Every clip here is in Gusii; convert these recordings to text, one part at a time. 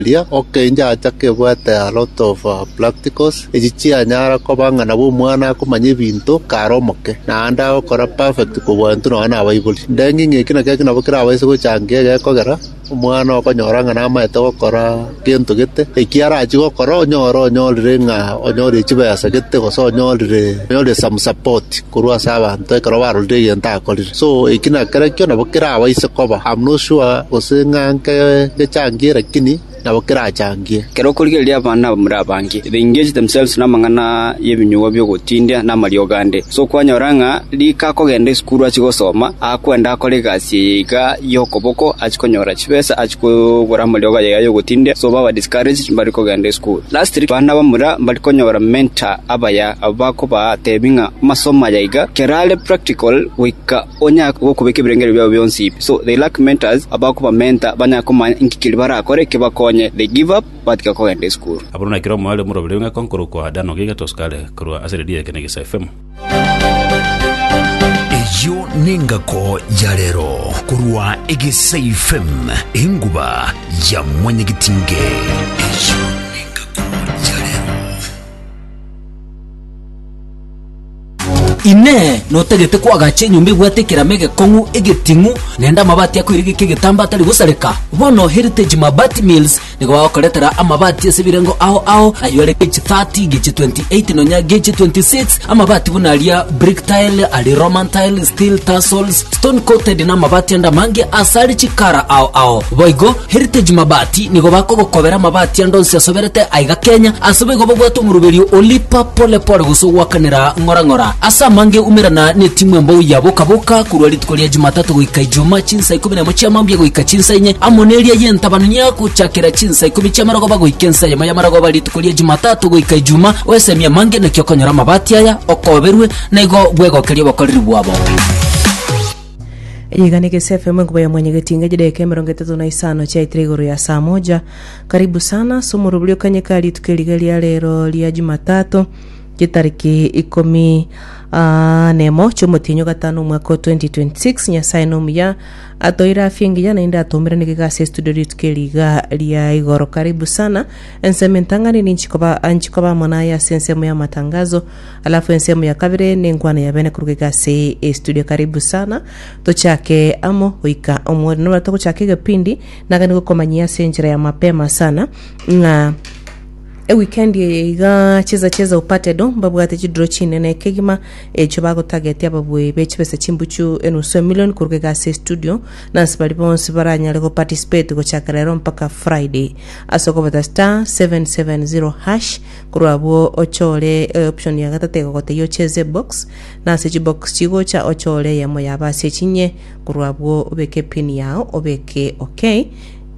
Riria okenyacha kebwate a lot of practicals, echi chianyara koba ng'a nabo omwana akomanya ebinto kare omoke, naende agokora perfect kobua intwe nonya nabaibori. Ndeng'e ng'a eki nakio nabo kerabaise gochangia egekogera omwana okonyora ng'a namaete gokora gento gete, eki arachie gokora onyore onyorire ng'a onyorire chibesa gete gose onyorire onyorire some support korwa ase abanto ekero barorire egento akorire. So eki nakerakio nabo kerabaise koba, am not sure gose ng'a ngechangie lakini nabo kerachangie. Ekero okorigereria abana abamura abange, they engage themselves namang'ana y'ebinyugwa bi'ogotindia na amariogo ande. So kwanyora ng'a rika akogenda esukuru achie gosoma, akwenda akore egasi eye iga y'okoboko achie konyora chibesa achie kogora amariogo aye iga y'ogotindia, so baba discouraged mbare kogenda esukuru. Lastiri bana bamura mbari konyora mentor abaya abwo bakobaa tebi ng'a amasomo aya iga kerare practical goika onya gokobeka ebirengerio biabo bionsi pi so they lack mentors abakoba mentor banya komanya inki keria barakore kebakonye they give up batiga kogenda esukuru. Aboro nakero mware moroberio ng'eko nkorokwa Dano gaiga tosikare korwa ase redio ya Ekenegesa FM. Eyio nengako ya rero korwa Egesaifm enguba ya mwanyagetinge. Eyio nengako ya rero. Inee! Notagete koagacha enyomba ebwate ekerama egekong'u, egeting'u, naende amabati akoirigeka egetambaa atari gosareka? Bono Heritage Mabati Mills Nigo bagokoretera amabati ase ebirengo ao ao, ayio are gechi 30, gechi 28, nonya gechi 26, amabati buna aria brick tile, aria Roman tile, steel tassels, stone coated, na amabati ande amange ase are chikara ao ao. Boigo, Heritage Mabati nigo bakogokobera amabati ande onsi asoberete aiga Kenya, ase boigo babwate omoruberio olipa pole pole gose ogwakanera ng'ora ng'ora. Ase amange umerana netimu embou ya Boka Boka korwa rituko ria Jumatatu goika Ijumaa chinsa Chinsa ikomi nemo chia mambia goika chinsa inye, amo neria y'entabanu y'agochakera chinsa ikomi chia marogoba goika ensa eyemo ya marogoba rituko ria Jumatatu goika Ijuma, oesemi amange naki okonyora amabati aya, okoberwe, na igo bwegokerie obokoreri bwabo. Riganike CFM enkuba ya mwanya getinga chideka emerongo etato na isano chiaitire igoro ya saa moja. Karibu sana, somorobori okanye ka rituko eriga ria rero ria Jumatatu. Chitariki ikomi ah, nemo chiomotienyi ogatano omwaka o 2026 nyasae nomuya atoire afya engiya naende atomerane kegasi estudio ritu keriga ria igoro karibu sana ensemo entang'ani ninchikoba anchikoba amo naye ase ensemo ya matangazo alafu ensemo ya kabere nenkwana ya bene koruga egasi estudio karibu sana tochake amo goika omweri nobatogochaka egepindi nagani gokomanyia ase enchera ya mapema sana ng'a Ewikendi eye iga chiza chi'Ezau Patedo mbabwate chidiro chinene ekegima echio bagotagetie ababui be chibesa chimbuchu enusu emilion korwa egasi ya estudio nansi baria bonsi baranyare go participate gochakera ero mpaka Friday. Ase okobeta star 770 hash korwa abwo ochore eoption ya gatato egogotebia ocheze ebox nase chibox chigocha ochore eyemo yaba ase echinye korwa abwo obeke pin yao obeke okay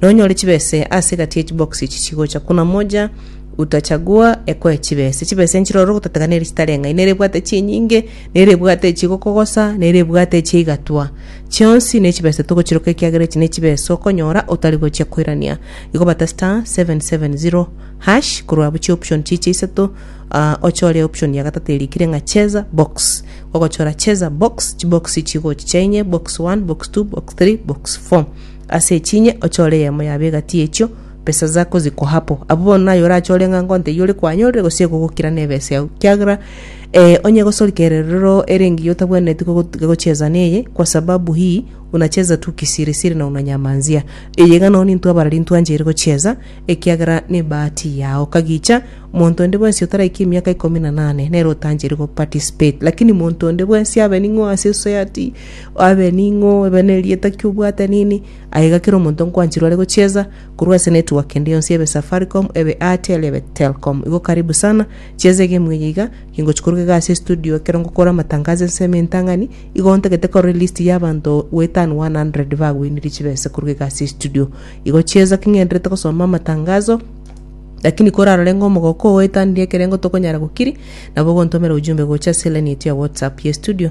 Nonyore chibese ase egati ye chiboxi echi chigocha kuna moja utachagua ekoe chibese. Chibese nchiroro gotategana ere chitare ng'ai, nere ebwate chinyinge, nere ebwate echi gokogosa, nere ebwate echi eigatwa. Chionsi ne chibese togochiroka ekiagera echi ne chibese okonyora otari gochia koirania. Igo bata star 770 hash korwa abuchie option chiche isato ah, ochore option ya gatato erikire ng'a cheza box. Ogochora cheza box, chiboxi chigochi chainye box 1, box 2, box 3, box 4. Ase echinye ochore eyemo yabo egati y'echio, besa zako zikoa apo. Abwo bono naye orachore ng'a ngonto eyio ore koanyorire gose egogokira nebesa yao, kiagera ee, onye egosorika ererero ere engiya otabwenereti gogo- gocheza neye, kwa sababu hii unacheza tu kisirisiri na unanyamanzia. Eye iga nao nintwe abarari ntwancheire gocheza, ekiagera nebahati yao. Kagicha, monto onde bwensi otaraiki emiaka ikomi na nane nere otancheire goparticipate. Lakini monto onde bwensi abe ning'o ase society, Abe ning'o, ebe nerieta ki obwate nini, aye iga kera omonto nkwanchirwe are gochiesa, korwa ase network ende yonsi ebe Safaricom, ebe Airtel, ebe Telcom. Igo karibu sana, chiesa egemu eye iga, kingochi koruga iga ase estudio ekero ngokora amatangazo ense ime entang'ani, igo ntagete korora elist ya abanto we than 100 bagwenirie chibesa koruga iga ase estudio. Igo chiesa ki ng'enderete gosoma amatangazo, lakini korarore ng'a omogoko oetanirie ekerengo tokonyara gokiri, nabo ogontomera ujumbe gocha ase elaini yaito ya WhatsApp ya estudio,